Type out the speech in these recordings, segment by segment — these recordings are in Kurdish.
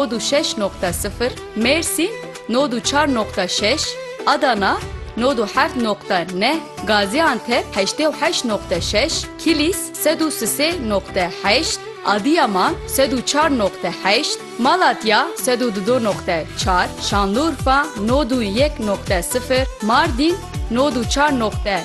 Nod û şeş noqte sifir, Mêrsîn, Nod û çar noqte şeş, Adana, Nod û heft noqte neh, Gazîantep, Heştê û heşt noqte şeş, Kîlîs, Sed û sisê noqte heşt, Adîyaman, Sed û çar noqte heşt, Malatya, Sed û dudo noqte çar, Şanlurfa, Nod û yek noqte sifir, Mardîn, Nod û çar noqte.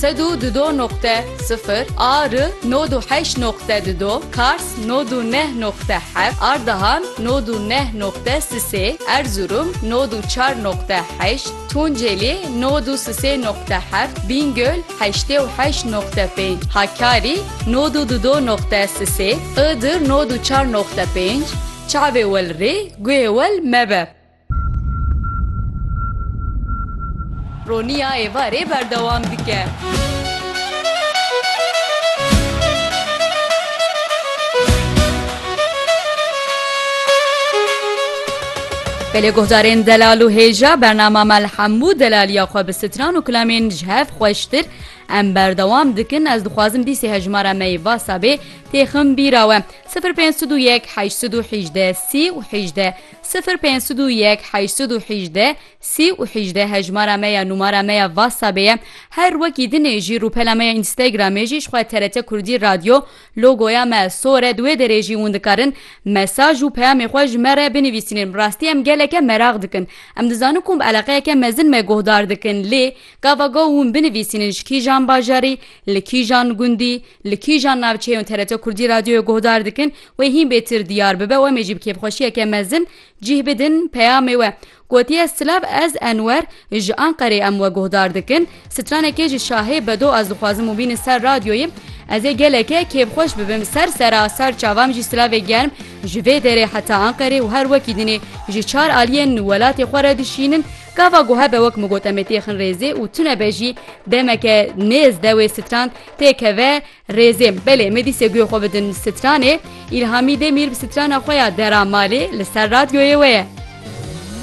Sed û du do noqte sifir a ri nod û heşt noqte du do Kars nod û neh noqte heft Ardahan nod û neh noqte sisê Erzurum nod û çar noqte heşt Tuncelî nod û sisê noqte heft Bîngöl heştê û heşt noqte pênc Hakkari nod û du do noqte sisê Iğdır nod û çar noqte pênc Çavê wel rê guhê wel mebe. Roniya êvarê berdewam dike. Belê guhdarên delal û hêja bernama me li hemû delaliya xwe bi stran û kilamên ji hev xweştir em berdewam dikin ez dixwazim dîsê hejmara me yê vasabê têxim bîra we 0501 818 30 û 18 Sifir pênc sed û yek heşt sed û hîjdeh sî û hîjdeh hejmara me ya numara me ya Whatsappê ye her wekî dinê jî rûpela me ya Instagramê jî jixwe TRT Kurdî Radyo logoya me sor e di wê derê jî hûn dikarin mesaj û peyamê xwe ji me re binivîsînin bi rastî em geleke meraq dikin em dizanin kom eleqeyeke mezin me guhdar dikin lê gava gaw hûn binivîsînin ji kîjan bajarî li kîjan gundî li kîjan navçeyên TRT Kurdî Radyoyê guhdar dikin Wê hîn bêtir diyar bibe û em ê jî bi kêfxweşiyeke mezin cîh bidin peyamê we. Gotiye silav ez Enwer ji Anqerê em we guhdar dikin. Stranekê ji şahê bedo ez dixwazim û bînin ser radyoyê. Ez ê geleke kêfxweş bibim ser serasar çavam jî silavê germ ji vê derê heta Anqerê û her wekî dinê ji çar aliyên welatê xwe re dişînin. Gava guhe be wek min got em ê têxin rêzê û tune be jî demeke nêz dewê stran têkeve. Rêzêm, belê me dîsê guê xwe bidin stranê, Îlhamî Demîr bi strana xwe ya Dera Malê li ser radyoyê we ye.